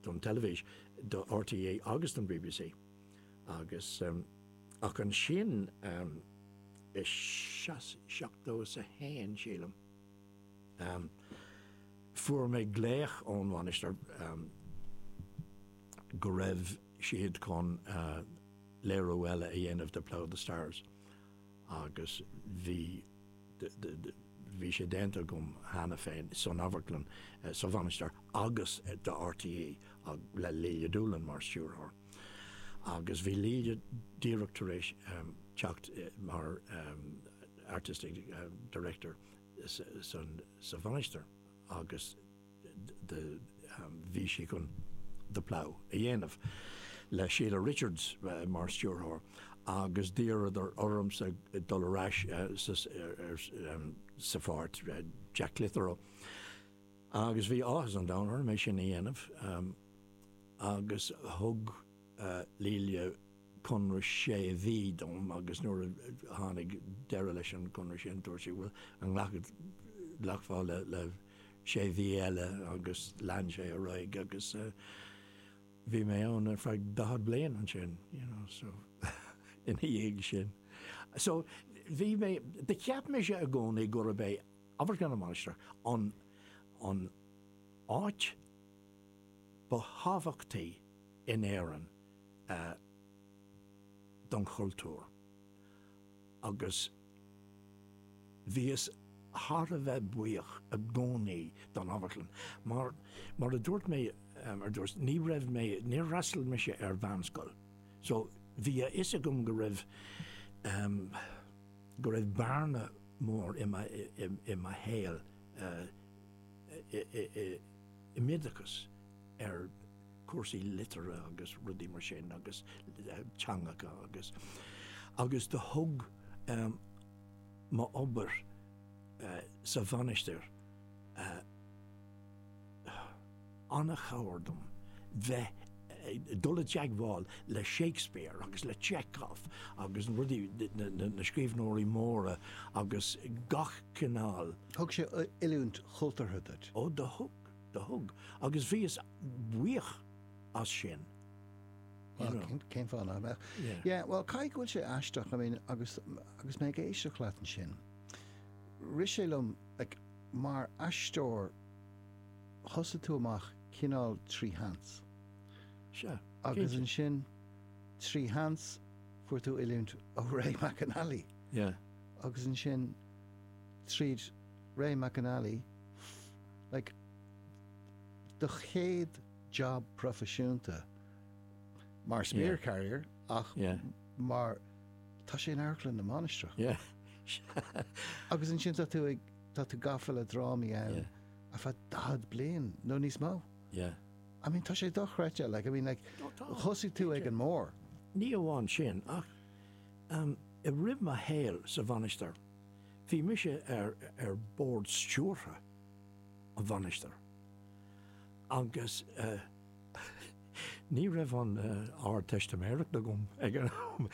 don teilifís, do RTÉ agus don bbc agus ach ansin i seachtó is a haon sílim fuair mé glaoch ón Mhainistir go raibh siad chun léiriú eile a dhéanamh de Plough and the Stars agus bhí, bhí sé déanta agam cheana féin san amharclann, sa Mhainistir agus do RTÉ le Lelia Doolan mar stiúrthóir. Agus bhí Lelia díreach tar éis teacht mar artistic director sa Mhainistir agus, do bhí sí chun The Plough a dhéanamh le Sheila Richards mar stiúrthóir agus d'iarradar ormsa dul ar ais sa pháirt Jack Clitheroe agus bhí áthas an domhain orm é sin a dhéanamh agus thug Lelia conradh sé mhí dom agus nuair a tháinig deireadh leis an gconradh sin dúirt sí bhuel, an nglacfá le sé mhí eile agus lean sé ar aghaidh agus bhí mé ann ar feadh 40 bliain ansin, you know, so ina dhiaidh sin. So bhí mé, cheap mise i gcónaí gurb é Amharclann na Mainistreach an áit ba thábhachtaí, in Éirinn don chultúr agus bhíos thar a bheith buíoch i gcónaí don amharclann mar, mar a dúirt mé ar dtús, ní raibh mé, níor fhreastail mise ar mheánscoil so bhí a fhios agam go raibh, go raibh bearna mór i mo shaol i m'oideachas ar. cúrsaí liteartha agus rudaí mar sin agus teangacha agus, agus do thug m'obair sa Mhainistir an-chabhair dom bheith, dul i dteagmháil le Shakespeare agus le Chekhov agus rudaí, na scríbhneoirí móra agus gach cineál. Thug sé oiliúint chultúrtha duit? Ó do thug. Do thug, agus bhíos buíoch as sin. you Well, know. cén, cén fáth nach mbeadh? Yeah. Yeah, well, caithfidh go bhfuil sé aisteach, I mean, agus, agus mé ag éisteacht leat ansin. Rith sé liom, like, mar aisteoir, thosaigh tú amach cineál trí sheans. Sure. Agus ansin, trí sheans, fuair tú oiliúint ó Ray McAnally. Yeah. Agus ansin, tríd Ray McAnally, Like, do chéad job proifisiúnta, mar spear carrier ach mar, tá sé in Amharclann na Mainistreach. Agus ansin tá tú ag, tá tú gafa le drámaí ann ar feadh 40 bliain nó níos mó. I mean, tá sé dochreidte, like, I mean, like, thosaigh tú ag an mór. Ní amháin sin ach um, i rith mo shaoil sa Mhainistir, Bhí mise ar ar Bhord Stiúrtha an Mhainistir agus ní raibh an Ardteistiméireacht agam ag an am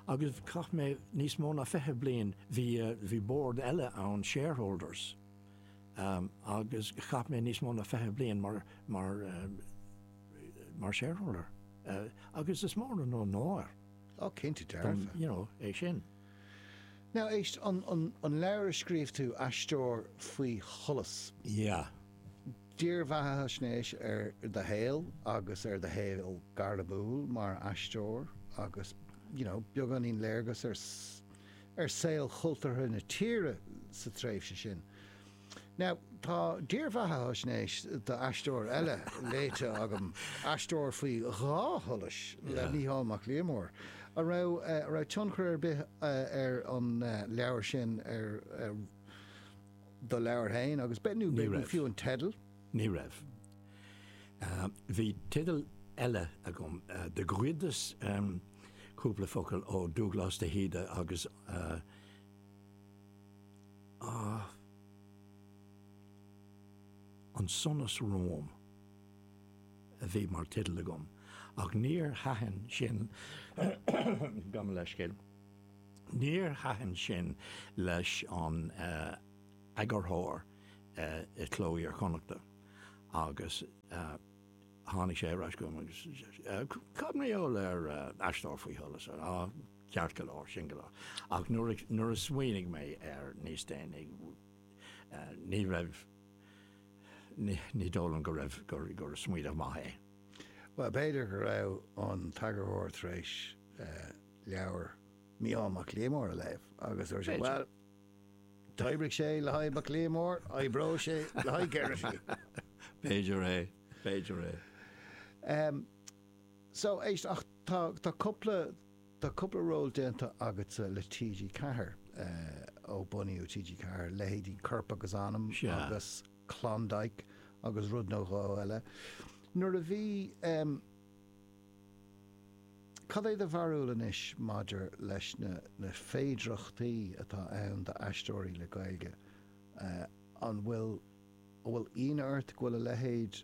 agus chaith mé níos mó ná fiche bliain, bhí, bhí Bord eile ann, shareholders, agus chaith mé níos mó ná fiche bliain mar, mar, mar shareholder agus is mór an onóir dom, you know, é sin. Now, éist, an, an, an leabhar a scríobh tú, Aisteoir faoi Sholas. Yeah. Dírbheathaisnéis ar do shaol agus ar do shaol gairmiúil mar aisteoir agus, you know, beagáinín léargas ar, ar saol chultúrtha na tíre sa tréimhse sin. Now, tá dírbheathaisnéis d'aisteoir eile léite agam, Aisteoir faoi Dhá Sholas le Mícheál Mac Liammóir. An raibh tionchar ar bith ag an leabhar sin ar do leabhar féin agus, nó fiú an teideal? Ní raibh. Bhí teideal eile agam, do ghoideas, cúpla focal ó Dúglás de hÍde agus. Ach An Sonas Romham a bhí mar teideal agam, ach níor thaitin sin Gabh mo leithscéal níor thaitin sin leis an eagarthóir i Cló Iar-Chonnachta agus tháinig sé ar ais chugam agus deir sé, Cad mar gheall ar aisteoir faoi sholas? Ceart go leor, sin go leor. Ach nuair a smaoinigh mé air níos déanaí, ní raibh, ní dóigh liom go raibh, gur smaoineamh maith é. Bhuel, b'fhéidir go raibh an t-eagarthóir tar éis leabhar Micheál Mac Liammóir a léamh agus dúirt sé, bhuel, d'oibrigh sé le haghaidh Mac Liammóir, oibreoidh sé le haghaidh Geraghty. B'fhéidir é, b'fhéidir é. So, Des, tá, tá cúpla, tá cúpla ról déanta agatsa le TG4, eh, ó bunaíodh TG4, leithéidí Corp agus Anam Sea. agus Klondike agus rud nó dhó eile. Nuair a bhí, em, cad é do bharúil anois maidir leis na, na féidireachtaí atá ann d'aisteoirí le Gaeilge, eh, an bhfuil, an bhfuil ionadh ort go bhfuil a leithéid,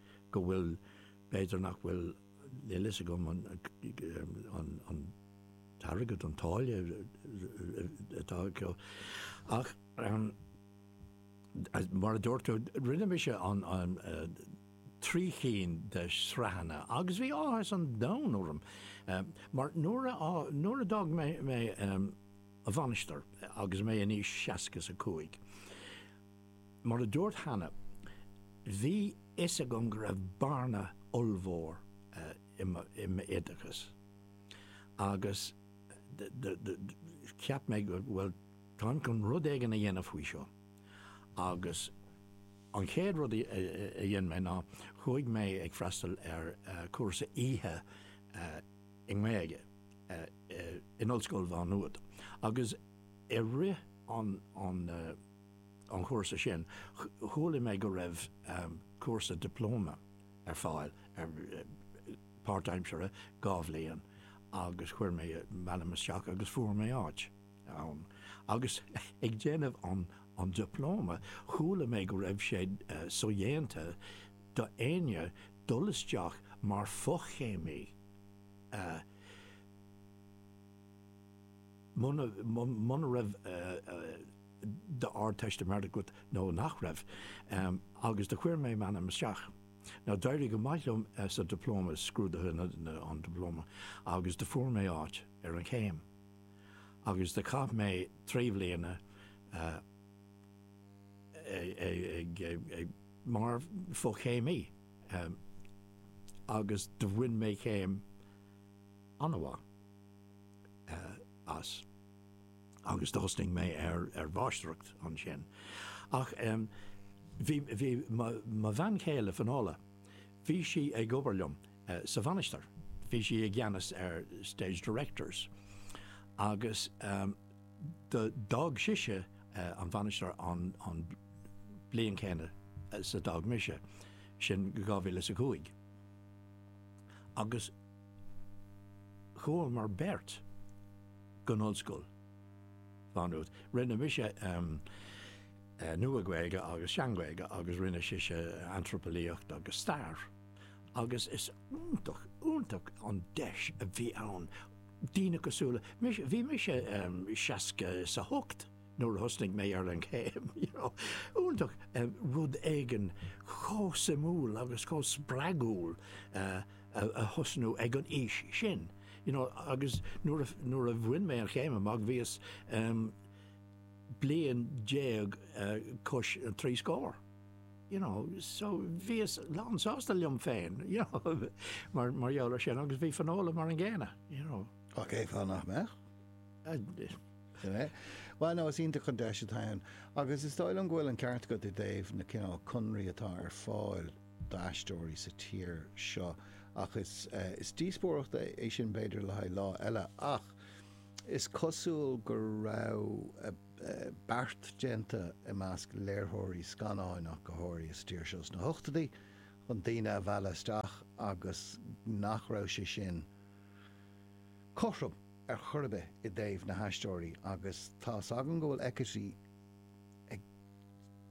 Go bhfuil, b'fhéidir nach bhfuil, níl a fhios agam an t-airgead, an táille atá acu ach mar a dúirt tú, rinne mise trí chinn de shraitheanna agus bhí áthas an domhain orm mar nuair a d'fhág mé an Mhainistir agus mé in aois seasca is a cúig, Mar a dúrt cheana, bhí a fhios agam go raibh bearna ollmhór i m'oideachas agus cheap mé go bhuel, táim chun rud éigin a dhéanamh faoi seo. Agus an chéad rud a dhein mé ná chuaigh mé ag freastal ar chúrsa oíche i nGaeilge in Ollscoil Mhá Nuad agus i rith an an chúrsa sin. Chualaidh mé go raibh cúrsa dioplóma ar fáil ar páirtaimseartha dhá bhliain agus chuir mé m'ainm isteach agus fuair mé áit ann. Agus ag déanamh an dioplóma chualaidh mé go raibh sé sodhéanta do éinne dul isteach mar fo-chéimí muna raibh Ardteistiméireacht agat nó nach raibh, agus do chuir mé m'ainm isteach. Ná d'éirigh go maith liom sa Dioplóma, scrúduithe an Dioplóma, agus do fuair mé áit ar an gcéim. Agus do chaith mé trí bhliana ag, mar fo-chéimí agus do bhain mé céim an-mhaith as. agus do thosnaigh mé ar ar mháistreacht ansin. Ach em. bhí, bhí mo, mo bhean chéile Finola, bhí sí ag obair liom eh sa Mhainistir, bhí sí i gceannas ar Stage Directors agus em. do, d'fhág sise eh an Mhainistir an, an bliain chéanna is a d'fhág mise, sin dhá mhíle is a cúig. Agus. Chuamar beirt gon ollscoil Má Nuad. Rinne mise Nua-Ghaeilge agus Sean-Ghaeilge agus rinne sise Antraipeolaíocht agus Stair agus is iontach, iontach an deis a bhí ann do dhaoine cosúil le mise, bhí mise seasca is a hocht nuair a thosnaigh mé ar an chéim, you know, iontach rud éigin chomh suimiúil agus chomh spreagúil a, a thosnú ag an aois sin you know agus nuair a bhain mé an chéim amach bhíos bliain déag os cionn an trí scór you know so bhíos lán sásta liom féin you know mar gheall ar sin agus bhí Fionnuala mar an gcéanna you know. Cén fáth nach mbeadh? Bhuel nó is iontach an deis atá ann agus is dóigh liom go bhfuil an ceart agat i dtaobh na cineál conraí atá ar fáil. d'aisteoirí sa tír seo. Ach is is díospóireacht é sin b'fhéidir le haghaidh lá eile. Ach is cosúil go raibh beart déanta i measc léiritheoirí scannán ach go háirithe sa tír seo sna hochtóidí chun daoine a mhealladh isteach agus nach raibh sé sin cothrom ar chor ar bith i dtaobh na haisteoirí agus tá's agam go bhfuil equity ag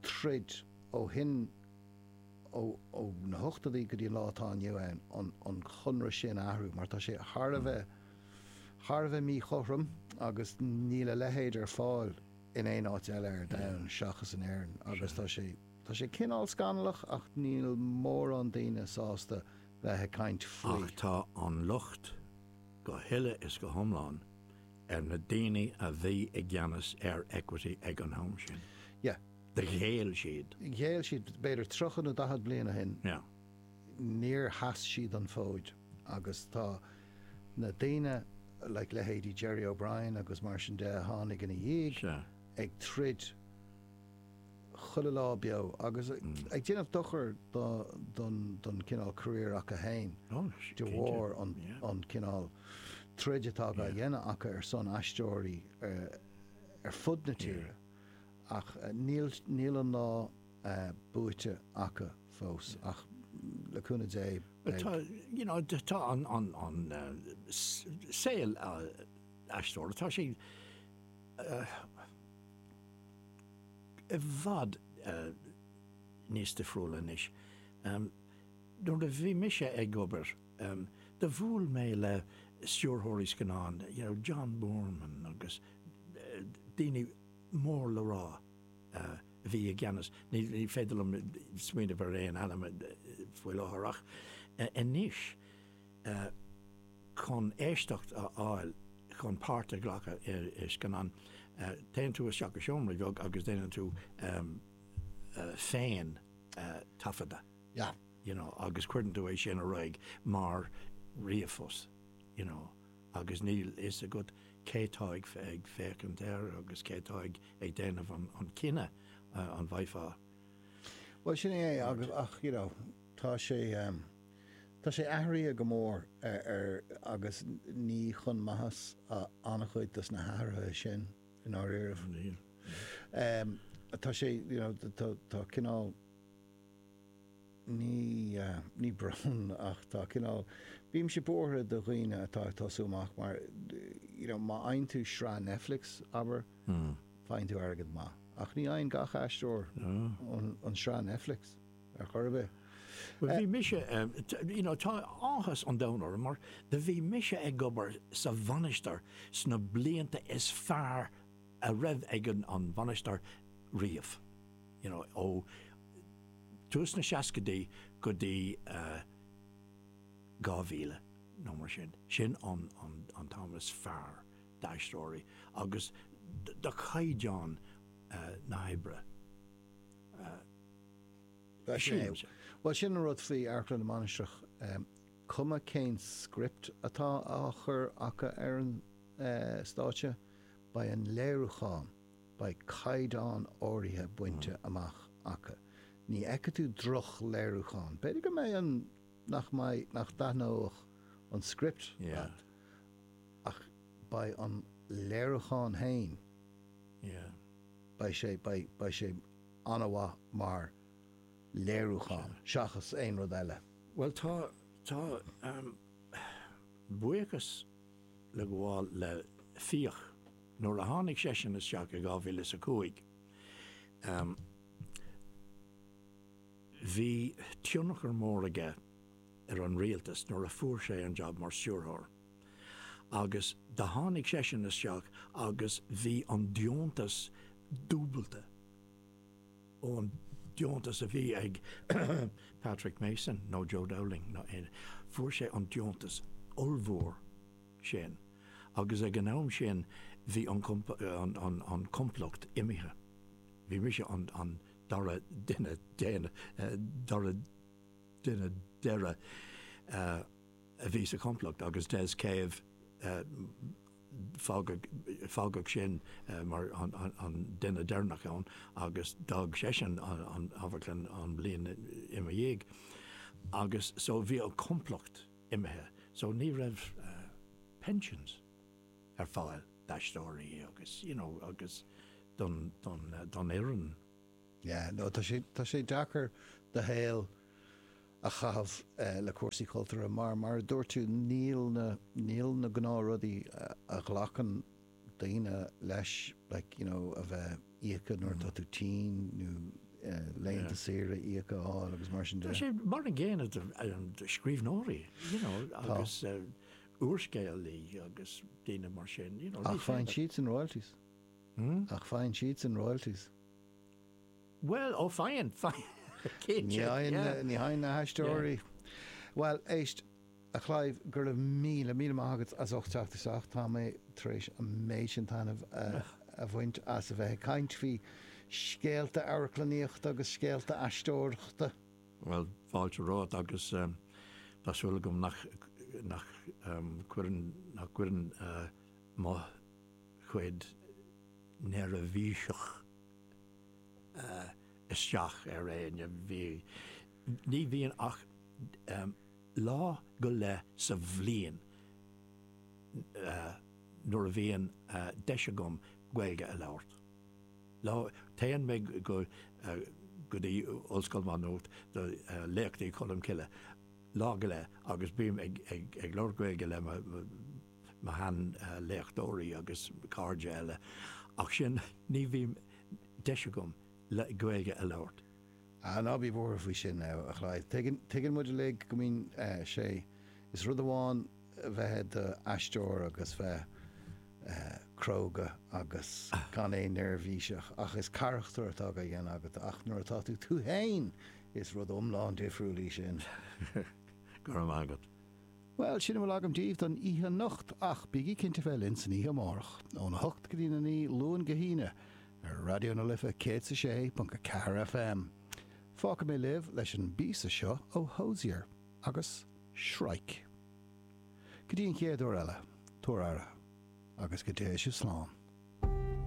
troid ó shin ó na hochtóidí go dtí an lá atá inniu ann, an conradh sin a athrú mar tá sé thar a bheith, thar a bheith míchothrom agus níl a leithéid ar fáil in aon áit eile ar domhan seachas in Éirinn agus tá sé, tá sé cineál scannalach ach níl mórán daoine sásta bheith ag caint faoi. Ach tá an locht go huile is go hiomlán ar na daoine a bhí i gceannas ar Equity ag an am sin. Yeah. Ghéill siad. Ghéill siad b'fhéidir tríocha nó daichead bliain ó shin. Níor sheas siad an fód agus tá na daoine, like leithéidí Gerry O'Brien agus mar sin de a tháinig ina dhiaidh, ag troid chuile lá beo agus ag déanamh dochair don chineál career acu fhéin de bharr an cineál troid atá á dhéanamh acu ar son aisteoirí ar fud na tíre. Ach níl níl an lá buaite acu fós ach le cúnamh Dé beidh. Tá you know tá an an saol aisteoireachta tá sé i bhfad níos difriúil anois. Nuair a bhí mise ag obair do bhuail mé le stiúrthóirí scannán you know John Boorman agus daoine mór le rá a bhí i gceannas, ní féidir liom smaoineamh ar aon ainm faoi láthair ach anois chun éisteacht a fháil chun páirt a ghlacadh i scannán téann tú isteach i seomra bheag agus déanann tú féintaifeadadh you know agus cuireann tú é sin ar aghaidh mar ríomhphost you know. agus níl fhios agat cé tá ag féachaint air agus cé tá ag déanamh an cinneadh an bhfaighfeá Bhuel sin é é agus ach you know tá sé tá sé athruithe go mór agus ní chun maitheasa an-chuid dos na hathruithe sin i ndáiríribh. Níl. Tá sé you know tá cineál. Ní, ní brón ach tá cineál, bímse buartha do dhaoine atá ag tosú amach mar you know má fhaigheann tú sraith Netflix, abair, faigheann tú airgead maith ach ní fhaigheann gach aisteoir an tsraith Netflix ar chor ar bith. Bhuel bhí mise, you know tá áthas an domhain orm mar do bhí mise ag obair sa Mhainistir sna blianta is fearr a raibh ag an Mhainistir riamh, you know ó, tús na seascaidí go dtí 2000 nó mar sin. Sin an t-am is fearr d'aisteoirí agus do chaighdeán na hoibre. Bhuel sin an rud faoi Amharclann na Mainistreach, cuma cén script atá á chur acu ar an stáitse, beidh an léiriúchán. beidh caighdeán áirithe bainte amach acu. Ní fheicfidh tú drochléiriúchán. B'fhéidir go mbeidh an, nach mbeidh, nach dtaithneóidh an script leat ach beidh an léiriúchán fhéin, beidh sé, beidh, beidh sé an-mhaith mar léiriúchán seachas aon rud eile. Bhuel tá, tá buíochas le gabháil le Fiach. Nuair a tháinig seisean isteach i dhá mhíle is a cúig bhí tionchar mór aige ar an Rialtas nuair a fuair sé an jab mar Stiúrthóir agus do tháinig seisean isteach agus bhí an deontas dúbailte ón deontas a bhí ag Patrick Mason nó Joe Dowling nó aon, fuair sé an deontas ollmhór. sin. Agus ag an am sin bhí an complacht imithe. Bhí mise an dara duine deireadh a bhí sa chomplacht agus Des Cave fágadh sin mar an duine deireanach ann agus d'fhág seisean an amharclann an bhliain ina dhiaidh. Agus so bhí an complacht. imithe so ní raibh pensions ar fáil d'aisteoirí agus you know agus don fhoireann. Yeah no tá sé tá sé deacair do shaol a chaitheamh le cúrsaí cultúrtha mar mar a dúirt tú níl na níl na gnáth rudaí a ghlacann daoine leis like you know a bheith íoctha nuair atá tú tinn nó laethanta saoire íoctha a fháil agus mar sin de. Tá sé mar an gcéanna do scríbhneoirí you know agus úrscéalaí agus daoine mar sin you know. Ach faigheann siadsan royalties? Hmm? Ach faigheann siadsan royalties? Bhuel ó faigheann faigheann cinnte yeah. Ní fhaigheann na haisteoirí yeah. Bhuel éist. A Chlive, go raibh míle, míle maith agat as ucht teacht isteach. Tá mé tar éis an méid sin taitneamh a bhaint as a bheith ag caint faoi scéalta amharclannaíochta agus scéalta aisteoireachta. Bhuel, fáilte romhat agus tá súil agam nach nach gcuireann mo chuid neirbhíseach isteach ar éinne. Ní bhíonn ach. Lá go leith sa bhliain nuair a bhíonn deis agam Gaeilge a labhairt. Lá, téann mé go go dtí Ollscoil Mhá Nuat do Léachtaí Cholm Cille lá go leith agus bím ag ag labhairt Gaeilge le mo mo shean léachtóirí agus cairde eile ach sin ní bhím deis agam Gaeilge a labhairt. Ah, ná bí buartha faoi sin, a Chlive. Tuigeann, tuigeann muid uilig go mbíonn sé, is rud amháin bheith i do aisteoir agus bheith cróga agus gan aon neirbhíseach ach is carachtar atá á dhéanamh agat ach nuair atá tú tú fhéin is rud iomlán difriúil é sin. Go raibh maith agat. Bhuel, sin a bhfuil agam daoibh don oíche anocht, ach bígí cinnte bheith linn san oíche amárach, óna hocht go dtí'n a naoi, Luan go hAoine, ar Raidió na Life 106.4 FM. Fágfaidh mé libh leis an bpíosa seo ó Hozier agus Shrike. Go dtí an chéad uair eile, tabhair aire, agus go dtéigh sibh slán.